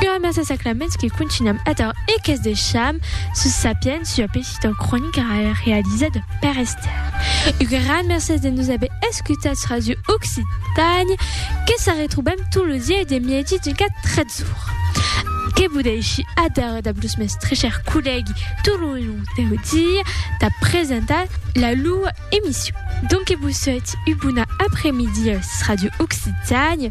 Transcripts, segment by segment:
Ua massa sacraments que contunham ator e que's deisham sus Sapiens ua petita cronica realizada per Esther. Un gran mercés de nos aver escutats Radio Occitània que se retrobam tot lo dieu de mièdi d'un quart tretz ora. Que vos dèishi ader dab los mès tres chèrs collègui tot lo long deu dia de presentar la loa emission. Donque vos sòiti ua bona apremidia sus Radio Occitània.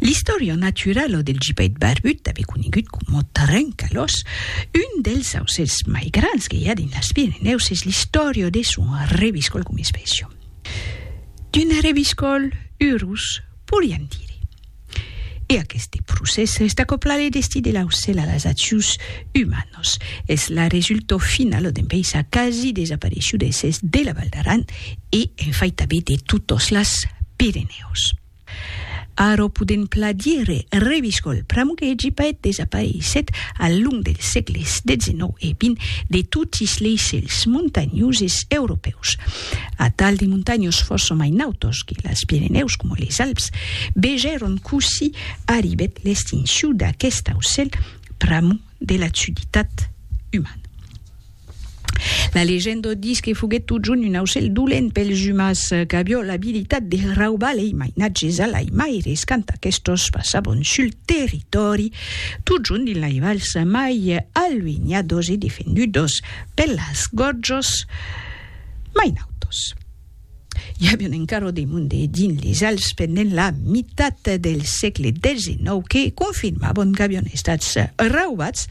L'istorian natural ò del gipèit barbut, tanben conegut coma trencalòs, un dels aucèls mai grands que i a dins las Pirenèus, es l'istorian ò de son reviscòl coma espècia. D'un reviscòl urus, poiriam dire. E aqueste procès resta coplat de destí de l'aucèl a las accions umanas. Nos es la resultau finala d'un paisà quasi desapareishut de s'est de la Val d'Aran e en fait tabé de totos las Pirenèus. Arò podem pla dire Reviscòl pr'amor que hègi paet desapareisset al long dels sègles dezenòu e vint de totis lei cèls montanhoses europèus. Atal de montanhos fòrça mai nautos que las Pirenèus coma les Alps vegèron cossí arribèt l'extinciu d'aquest aucèl pr'amor de la suditat umana. La legenda dis que foguèt totjorn un aucèl dolent pels umans qu'avió l'abilitat de raubar lei mainatges a l'aimaires quand aquestos passavon sul territòri, totjorn dins lei vals mai aluenhados e defendudos per las gòrjos mai nautos. I a un encara de monde dins les Alps pendent la mitat del sègle xix que confirmabon qu'avion estats raubats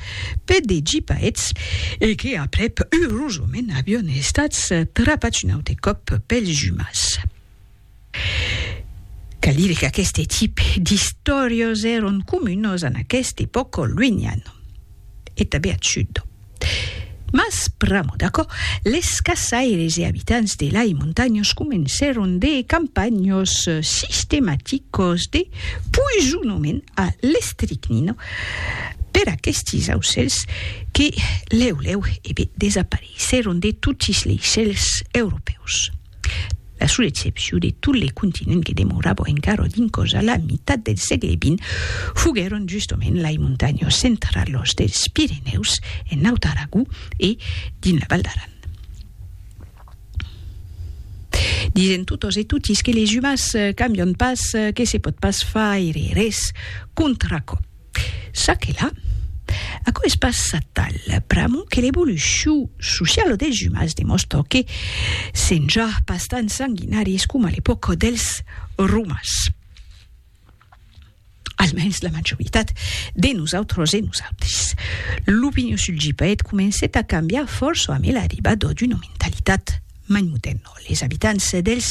per de gipaets e que aprèp urosament avion estats trapats un aute còp pels umans. Cal dire qu'aqueste tipe d'istòrios èron comunos en aqueste pòcol luenhan. e tanben ath sud d'Òm. Mas, pr'amor d'aquò, les caçaires e abitants de lai montanhos comencèron de campanhos sistematicos de poisonament a l'estricnina per aquestes aucèls que lèu lèu e be desapareissèron de totes lei cèls europèus. La sola excepcion de tot le continent que demorava encara dins còs a la mitat del sègle vint foguèron justament lai montanhas centralas dels Pirenèus, en Naut Aragó e dins la Val d'Aran. Disen totas e totis que les umans cambian pas, que se pòt pas faire res contra aquò. Ça que la. Aquò es pas atal pr'amor que l'evolucion sociala dels umans demòstra que sèm ja pas tan sanguinaris coma a l'epòca dels Romans. Almens la majoritat de nosautres e nosautres. L'opinion sul GPET comencèt a cambiar fòrça amé l'arribada d'una mentalitat mai modèrna. Les abitants dels.